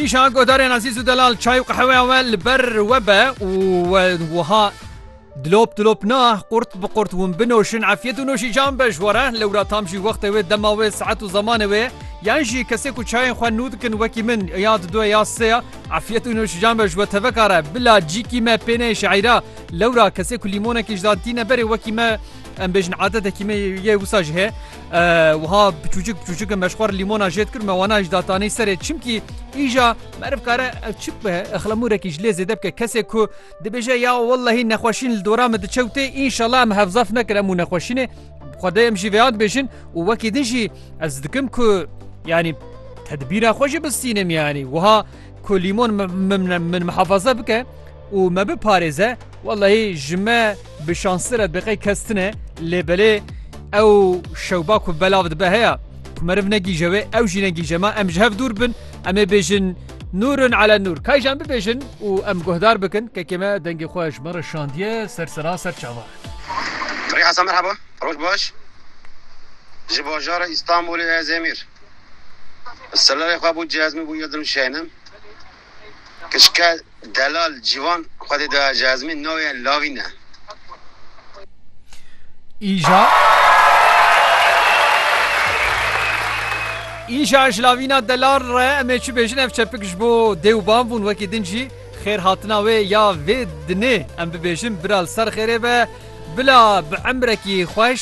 Îşa godarên ezîz û delal çay û qeheweya we li ber we be û we wiha dilop dilop na qurt bi qurt hûn binoşin efiyet û noşî can be ji were lewra tam jî wextê wê dema wê saet û zemanê wê yan jî kesê ku çayên xwe nû dikin wekî min ya di duye ya seya efiyet û noşî can be ji we tevekare bila cîkî me pênê şeîra lewra kesê ku lîmonekî ji da tîne berê wekî me em bêjin adetekî me yê wisa ji hê Wiha biçûcik biçûcik meşxwar lîmona jêt kir me wana ji datanê serê çimkî îja meriv kare ev çi bibe exlemûrekî ji lê zêde bike kesê ku dibêje ya wellehî nexweşîn li dora min diçewtê înşala em hevzaf nekir em û nexweşînê xwedê em jî vêya dibêjin û wekî din jî ez dikim ku yanî tedbîra xwe jî bistînim yanî wiha ku lîmon min min min mihafeze bike û me biparêze wellahî ji me bi şansi re biqey kes tune lê belê ew şewba ku belav dibe heye ku meriv negîje wê ew jî negîje me em ji hev dûr bin em ê bêjin nûrun ele nûr kayjan bibêjin û em guhdar bikin kekê me dengê xwe ji me re şandiye ser sera ser çavan. Rê Hesa merheba roj baş ji bajara Îstanbulê ez Emîr silerê xwe bû cezmî bû yedim şenim Kişke delal Cîvan Xwedê daya Cezmî navê Lavîn e. Îja Îja ji Lavîna delal re em ê çi bêjin ev çepik ji bo dê û bav bûn wekî din jî xêr hatina wê ya vê dinê em bibêjin bira li ser xêrê be bila bi emrekî xweş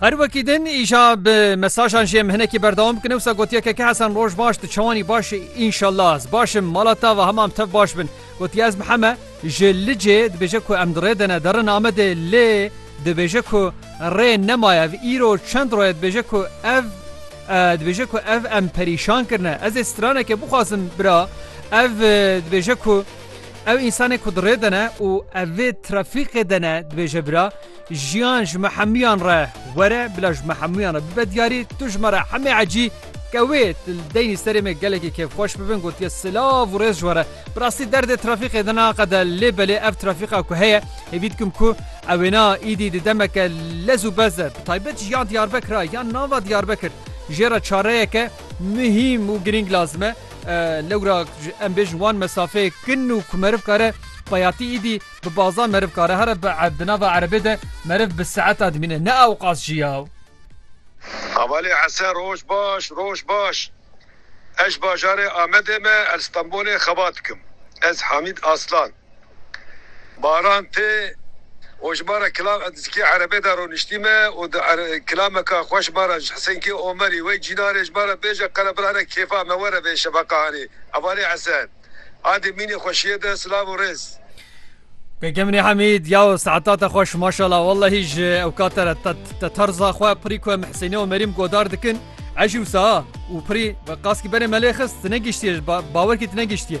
Her wekî din îşa bi mesajan jê em hinekî berdewam bikine wisa gotiye keke Hesen roj baş tu çawanî baş înşallah ez baş im mala te ve hema em tev baş bin gotiye ez miheme ji licê dibêje ku em dirê dene derin Amedê lê dibêje ku rê nemaye ev îro çend roye dibêje ku ev dibêje ku ev em perîşan kirine ez ê straneke bixwazim bira ev dibêje ku ew însanê ku dirê dene û ev vê trafîqê dene dibêje bira Jiyan ji me hemûyan re were bila ji me hemûyan re bibe diyarî tu ji me re hemê ecî ke wê tu li deynî serê me gelekî kêfxweş bibin gotiye silav û rêz ji we re bi rastî derdê trafîqê din a qede lê belê ev trafîqa ku heye hêvî dikim ku ewêna îdî di demeke lez û bez de bi taybet ji ya Diyarbekir a yan nava Diyarbekir jê re çareyeke muhîm û girîng lazim e lewra em bêjin wan mesafeyê kin û ku meriv kare payatî îdî Bi baza meriv kare here bi di nava erebê de meriv bi saeta dimîne ne ewqas jî ya. Hevalê ese roj baş roj baş ej bajarê Amedê me el Stenbolê xeba dikim ez Hamîd Aslan baran tê û ji mare kila zikê erebê de roniştî me û di kilameka xwe ji mare Hisenkê Omerî wey cînarê ji mare bêje qere birane kêfa me were vê şefeqahanê hevalê ese. Adê mînê xweşiyê de silav û rêz. Gegemnê Hemîd, yaw saeta te xweş maşala wellehî ji ew kate re te terza xwe pirî ku em Hisênê û Merîm godar dikin ejî wisa û pirî qaskî berê melê xist tu negiştiye bawerkî tu negiştiye.